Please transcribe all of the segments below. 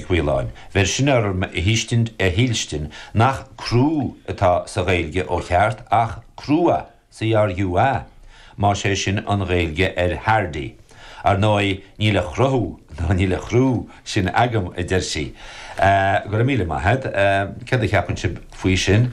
Mhaoláin. Bheir sin orm a thuiscint, a shílstin, nach crú atá sa Ghaeilge ó cheart ach crua, CRUA, más é sin an Ghaeilge ar Hardy. Ar ndóigh, níl a chruthú nó níl a chrú sin agam, a deir sí. Go raibh míle maith agat. Céard a cheapann sibh faoi sin?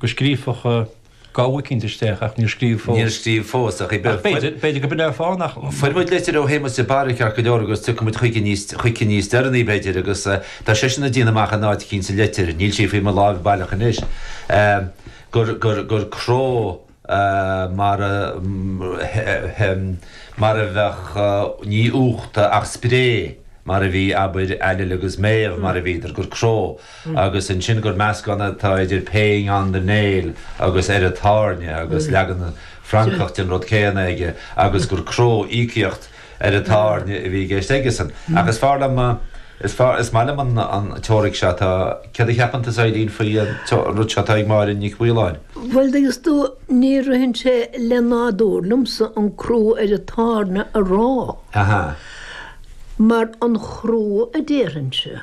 go scríobhfadh gabha eicínt isteach ach níor scríobh fós. Níor scríobh fós ach b'fhéidir go mbainfeadh fáth nach. Fuair muid litir ó Shéamus de Barra ceart go leor agus tiocfaidh muid chuici níos deireanaí, b'fhéidir, agus tá seisean ag déanamh amach in áit eicínt sa litir, níl sí faoi mo láimh baileach anois, gur cró. mar mar a bheadh ní uachta ach spré mar a bhí abair ailill agus méabh mar a bhíodar gur cró agus ansin gur meascán atá idir pay on the nail agus ar an tairne agus leagan Francach den rud céanna aige agus gur cró íocaíocht ar an tairne a bhí i gceist aigesan. Ach is fearr liom, is fearr, is maith liom an teoiric seo atá, céard a cheapann tusa, a Eibhlín, faoi an rud seo atá ag Máire Nic Mhaoláin? Bhuel, thuigeas tú, ní ritheann sé le nádúr liomsa an crú ar an tairne a rá, mar an chrú a déarfainnse.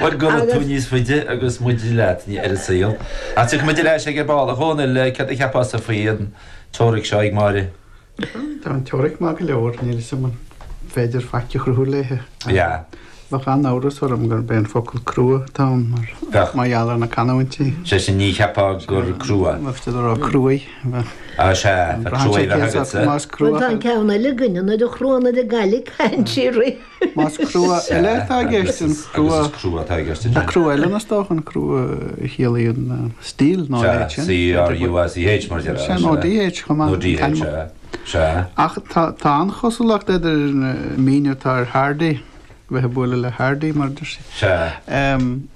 Bhuel, gura tú níos faide agus muid leat ar an saol. Ach tiocfaidh muid ar ais aige ar ball. A Dhónaill, céard a cheapfása faoi an teoiric seo ag Máire? Tá an teoiric maith go leor, níl 'fhios a'm an féidir faic a chruthú léithe. Yeah. Bheadh an-amhras orm gurb é an focal crua atá ann mar gheall ar na canúintí. Sé sin, ní cheapfá gur crua? Más féidir a rá cruaidh. Ah, sea, tá cruaidh a bheadh agatsa. Bhuel, tá an ceann eile againn, an oiread chruaidh, an oiread gaile, caint síoraí. Más crua eile atá i gceist an crua. Agus is crua atá i gceist ansin. Crua eile ina stoc, an crua a chiallaíonn steel nó a leithéid sin. Sea, C-R-U-A-C-H mar a déarfá. Sea, nó D-H chomh maith. Nó D-H, sea, sea. Ach tá an-chosúlacht idir an míniú atá ar Hardy, bheith ag bualadh le Hardy, mar a deir sí. Sea.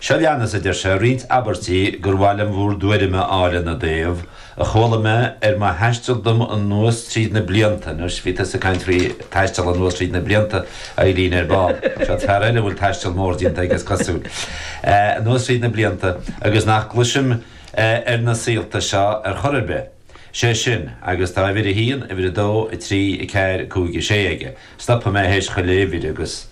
Seo leanas a deir sé, Roinnt abairtí gur mhaith liom bhur dtuairim a fháil ina dtaobh, a chuala mé ar mo thaisteal dom anuas tríd na blianta, anois, bhí tusa ag caint faoi thaisteal anuas tríd na blianta, a Eibhlín, ar ball, seo fear eile a bhfuil taisteal mór déanta aige, is cosúil, anuas tríd na blianta, agus nach gcloisim ar na saolta seo ar chor ar bith. sé sin, agus tá uimhir a haon, uimhir a dó, a trí, a ceathair, a cúig, a sé aige. Stopfaidh mé théis chuile uimhir agus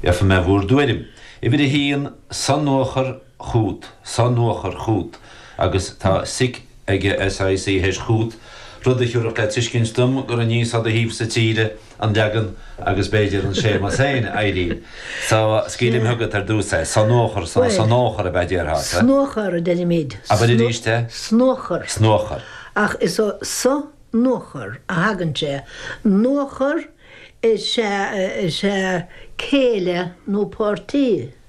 iarrfaidh mé bhúr dtuairim. Uimhir a haon, Sonuachar chút, Sonuachar chút, agus tá sic aige, SIC, théis chút, rud a thiúrfadh le tuiscint dom gur aníos ó do thaobhsa tíre, an leagan agus b'fhéidir an Séamas féin, a Eibhlín, so scaoilim chugat ar dtús é. Sonuachar, so, sonuachar ab ea a déarfá, sea? Snuachar a deirimid. Abair arís é. Snuachar. Snuachar. Ach is ó sonuachar a thagann sé. Nuachar is ea céile nó páirtí.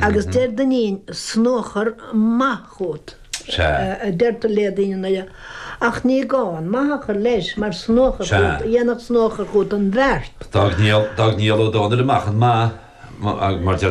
Agus deir Duinnín, 'S nuachar maith chút, a deirtear le daoine anois, ach ní gá an maith a chur leis, mar 's nuachar chút, a dhéanfadh 's nuachar chút an bheart. D'fhág Niall Ó Dónaill amach an maith, mar deir.